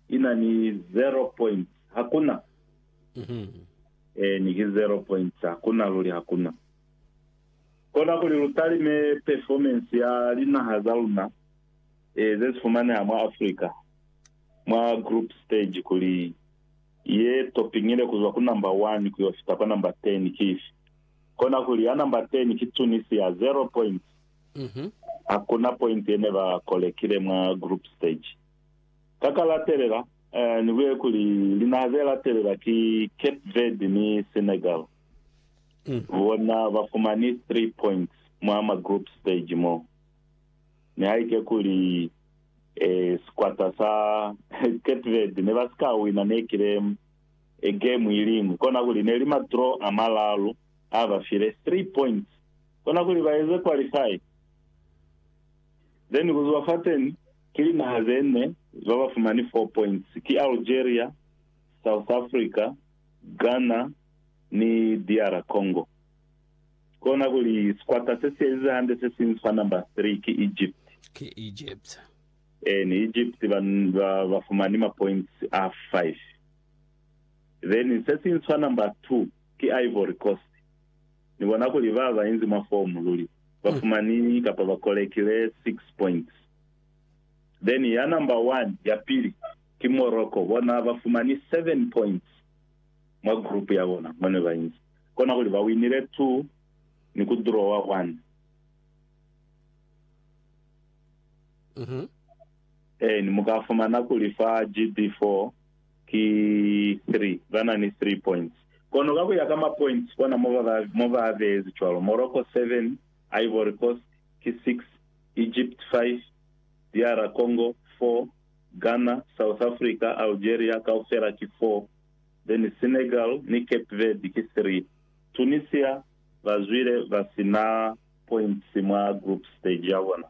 Ina ni zero point. Hakuna. Eh, ni ki zero point. Hakuna luli, hakuna. Kona kuli lutalime performance ya linaha za luna eh, ze sifumaneha mwa Africa mwa group stage kuli ye topingile kuzwa ku number one kuyo fita kwa number ten ki ifi. Kona kuli ya number ten ki Tunisia, zero point. Hakuna point yene ba kolekile mwa group stage. Ka ka latelela, ni buye kuli linaha ze latelela ki Cape Verde ni Senegal. Bona ba fumani 3 points mwa ma group stage mo. Nihaike kuli sikwata sa Cape Verde ne ba si ka wina nekile game iliñwi, kona kuli ne li ma draw a malalu a ba file 3 points kona kuli ba eze qualify. Then kuzuba fateni ki linaha zene zabafumani 4 points ki Algeria, South Africa, Ghana ni DR Congo. Kona kuli sikwata sesielize hande sesiñwi fa number 3 ki Egypt. Ki Egypt. Eeni, Egypt bafumani ma points a 5. Then sesiñwi fa number 2 ki Ivory Coast. Ni bona kuli ba ba inzi mwa fomu luli ba fumani kapa ba kolekile 6 points. Then ya number 1, ya pili, ki Morocco. Bona ba fumani 7 points mwa group ya bona mo ne ba inzi. Kona kuli ba winile 2 ni ku drawer 1. Eeni, mu ka fumana kuli fa GD4, ki 3, ba na ni 3 points. Kono ka ku ya ka ma points kona mo ba, mo ba beezi cwalo, Morocco 7, Ivory Coast ki 6, Egypt 5, DR Congo 4, Ghana, South Africa, Algeria kaufela ki 4, then Senegal ni Cape Verde ki 3. Tunisia ba zwile ba si na points mwa group stage ya bona.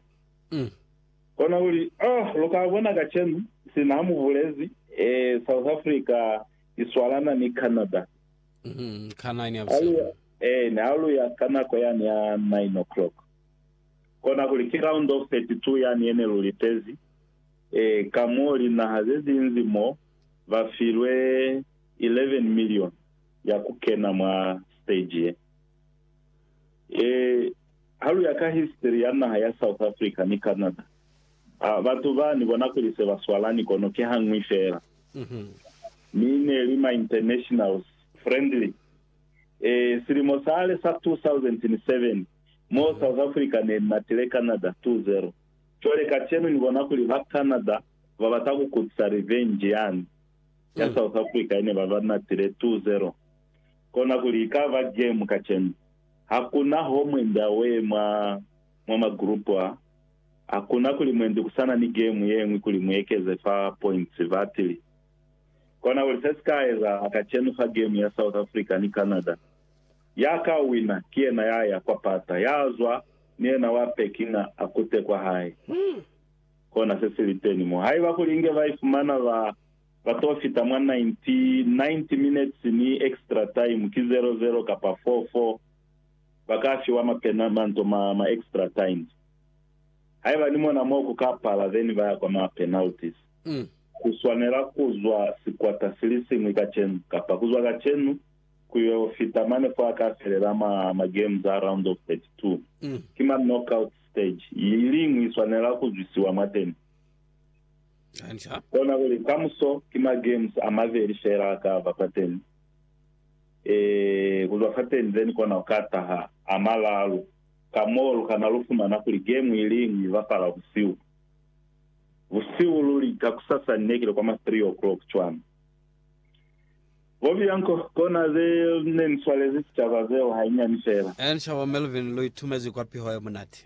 Kona kuli, Oh, lu ka bona kacenu, sina mu bulezi, eh, South Africa i swalana ni Canada. Mm-hmm. Ka nine ya Ha lu buseni. ya, eeni, ha lu ya ka nako yani ya nine o'clock. Kona kuli, ki round of thirty-two yani yene lu litezi, eh, ka mo linaha ze zinzi mo, ba filwe eleven million ya ku kena mwa stage ye. Ee, ha lu ya ka history ya naha ya South Africa ni Canada, a batu ba ni bona kuli se ba swalani kono ki ha ñwi fela. Mi ne li ma internationals friendly. Ee, silimo sale sa 2007, mo South Africa ne ni matile Canada 2-0. Cwale kacenu ni bona kuli ba Canada ba bata ku kutisa revenge yani ya South Africa ye ne ba ba natile 2-0. Kona kuli ikaba jemu kacenu. Hakuna ho mwendi aweye mwa, mwa magrupu a. Hakuna kuli mwendi kusana ni gemu yeñwi kuli muekeze fa points. Batili. Kona kuli se sika ezahala kacenu fa gemu ya South Africa ni Canada, ya ka wina ki yena ya ya kwa pata, ya zwa ni yena wa packing a, a kute kwa hae. Kona se si liteni mo. Haiba kuli inge ba ifumana ba. Ba to fita mwa 90, 90 minutes ni extra time ki 0, 0 kapa 4, 4. Ba ka fiwa ma pena, manto ma, ma extra times. Haiba ni mona mo ku ka pala, then ba ya kwa ma penalties. Mm. Ku swanela ku zwa sikwata si li siñwi kacenu, kapa ku zwa kacenu, ku yo fita mane fo a ka felela ma, ma games a round of 32. Mm. Ki ma knockout stage. Iliñwi i swanela ku zwisiwa mwateni. Kona kuli kamuso ki ma games a mabeli fela a ka ba fateni. Eeh, ku zwa fateni then kona ku ka taha a malalu. Ka moo lu kana lu fumana kuli game iliñwi i bapala busihu. Busihu luli, kakusasa ni ne ki li kwa ma three o'clock cwana. Bo Bianco, kona ze ne ni swalezi sicaba zeo hainyani fela. Encaba Melvin, lu itumezi kwa piho ye munati.